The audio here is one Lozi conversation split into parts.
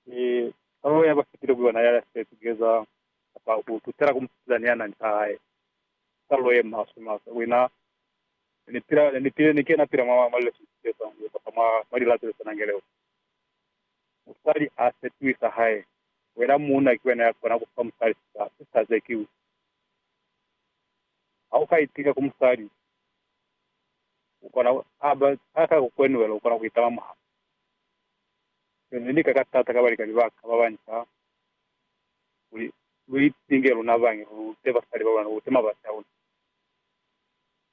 Mi Palo ya ba fitile ku yona ya se tugeza kapa ku tutela ku mupila ni anani sa hae, ki palo ye maswe maswe. Ku ina, ne ni pila, ne ni pile, ni ke na pila mwa, mwa lileso ze sa ngu kapa mwa, mwa lilato le sa nange leo. Musali a se tuhi sa hae. Wena muuna ki wena ya kona ku fa musali sisa, sisa ze ki u. Ha u ka itika ku musali, u kona ku, ha ba, ha ka ku kwenuhela, u kona ku itama mwa hae. Lu ni lika ka taata ka balikani ba ka ba banca kuli lu itinge luna bañi, lu lute basali ba luna, lu lute mabazi a luna.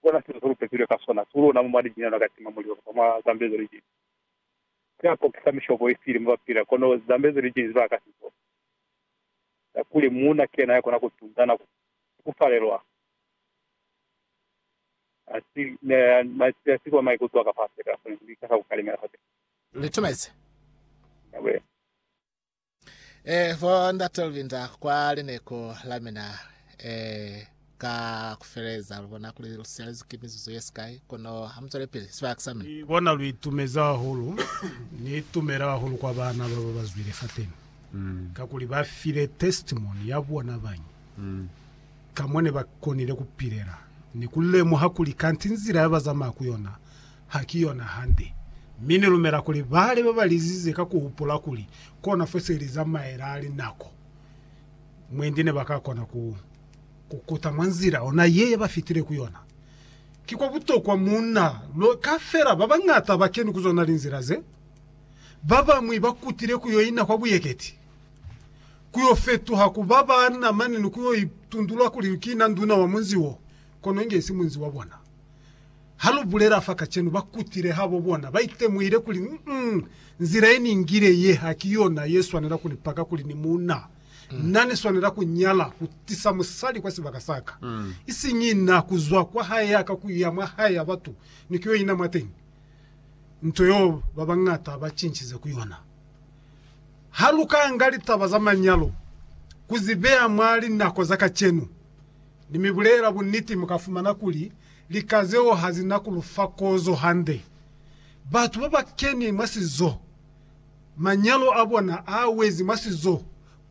Ku bona sizo se lu pepilwe ka sona, si luna mu mwa lijinya luna ka tima mulilo kapa mwa zambezo lijinzi. Ku ya kokisa mishobo i sili mo ba pila, kono zambezo lijinzi ba ka si bone. Ka kuli muuna ki yena ya kona ku tunda na ku tukufalelwa, ha si, ne, ne, ne a si kwa maikuto a ka fasi, a ka kona ku ikasa ku kalimela fapil'a. litumezi. Amen. Eh, bo ndate lubinda kwa lineku la mina, eh, ka kufeleza lubona kuli lusialezi ki mizuzu yesikai, kono hamutswele pili sibaka sa mina. Ni bona lu itumezi hahulu. Ni itumela hahulu kwa baana baba bazwile fateni, kakuli ba file testimony ya bona bañi ka mo ne ba konile ku pilela ni ku lemuha kuli kanti nzila ya ba zamaya ku yona Ha ki yona hande. Mi Ni lumela kuli bale ba ba lizize ka ku hupula kuli kona fo se li zamaela linako mwendi ne ba ka kona ku kukuta mwa nzila ona ye ba fitile ku yona. Ki kwa butokwa munna lo ka fela ba bañata ba keni ku zona linzila ze. Ba bañwi ba kutile ku yo ina kwa buyeketi, ku yo fetuha ku ba ba na mane ni ku yo itundula kuli ki na nduna wa munzi wo, kono inge isi munzi wa bona. Ha lu bulela fa kacenu, ba kutile habo bona ba itemuhile kuli, mm, nzila ye ni ngile ye ha ki yona ye swanela ku ni paka kuli ni munna. Na ni swanela ku nyala, ku tisa musali kwa sibaka sa ka, isiñi na ku zwa kwa hae ya ka ku ya mwa hae ya batu ni ku yo ina mwateñi. Nto yeo ba bañata ba cincize ku yona. Ha lu ka nga litaba za manyalo ku zi beya mwa linako za kacenu, Ni mi bulela buniti, mu ka fumana kuli lika zeo ha zi na ku lu fa kozo hande. Batu ba ba keni mwa sizo, manyalo a bona a wezi mwa sizo,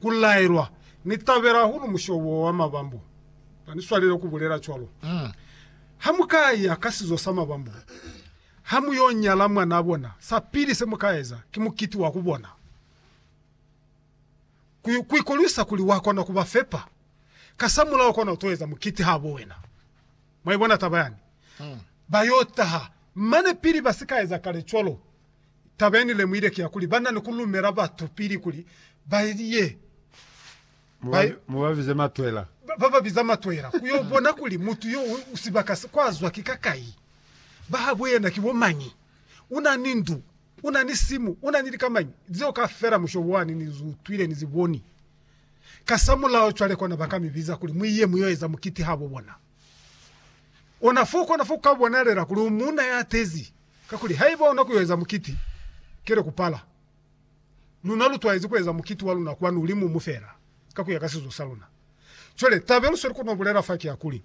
ku laelwa. Ni tabela hahulu musho wo wa mabambo. Ba ni swalele ku bulela cwalo. Ha mu ka ya ka sizo sa mabambo, ha mu yo nyala mwanaa bona, sa pili se mu ka eza ki mukiti wa ku bona. ku ikolwisa kuli wa kona ku ba fepa. Kasamulaho kona u to eza mukiti habo wena. Mwa ibona taba yani? Ba yo taha. Mane pili ba si ka eza kale cwalo, taba ye ni lemuhile ki ya kuli ba na ni ku lumela batu pili kuli ba ye, ba, Mu ba bize matwela. ba, ba ba biza matwela ku yo bona kuli mutu yo u sibaka se kwa zwa ki ka kai, ba habo yena ki bo mañi, u na ni ndu, U na ni simu, u na ni likamañi, zeo kaufela musho wani ni zi utwile, ni zi boni. Kasamulaho cwale kona ba ka mi biza kuli mu ye mu yo eza mukiti habo bona. Ona fo u kona fo ku ka bonalela kuli u muuna ya tezi, kakuli haiba ona ku yo eza mukiti, kele ku pala. Luna lu twaezi ku eza mukiti wa luna kwanu limumu fela, ka ku ya ka sizo sa luna. Cwale, taba ye lu sweli ku no bulela fa ki ya kuli,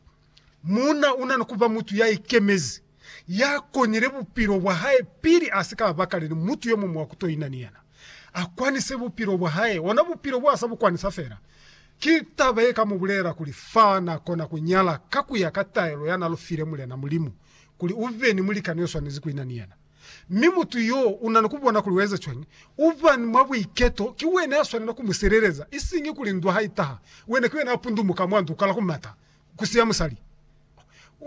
Muuna una ni kuba mutu ya ikemezi, ya konile bupilo bwa hae pili a si ka bakale ni mutu yo muñwi wa ku toina ni yena. A kwanise bupilo bwa hae, ona bupilo bo a sa bu kwanisa fela. Ki taba ye ka mu bulelela kuli fa na kona ku nyala ka ku ya ka taelo ya na lu file Mulena Mulimu, kuli u be ni mulikani yo swanezi ku ina ni yena. Mi mutu yo una ni ku bona kuli u eza cwañi? U ba ni mwa buiketo, ki wena ya swanela ku mu sileleza, isiñi kuli ndwa ha i taha, wena ki wena ya pundumuka mwa ndu kala ku mata. ku siya musali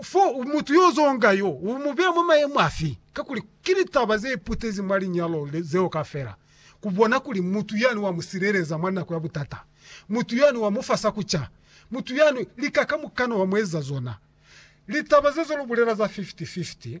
fo mutu yo zonga yo u mu beya mwa mayemo afi kakuli ki litaba ze putezi mwa linyalo zeo kafela ku bona kuli mutu yani wa mu sileleza mwa nako ya butata mutu yani wa mu fa sa ku ca mutu yani lika kamukana wa mu ezeza zona litaba zezo lu bulela za 50 50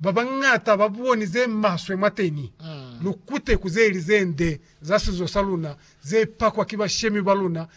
babañata ba boni ze maswe mwateni, lukute ku ze li ze nde za sizo sa luna ze pakwa ki bashemi ba luna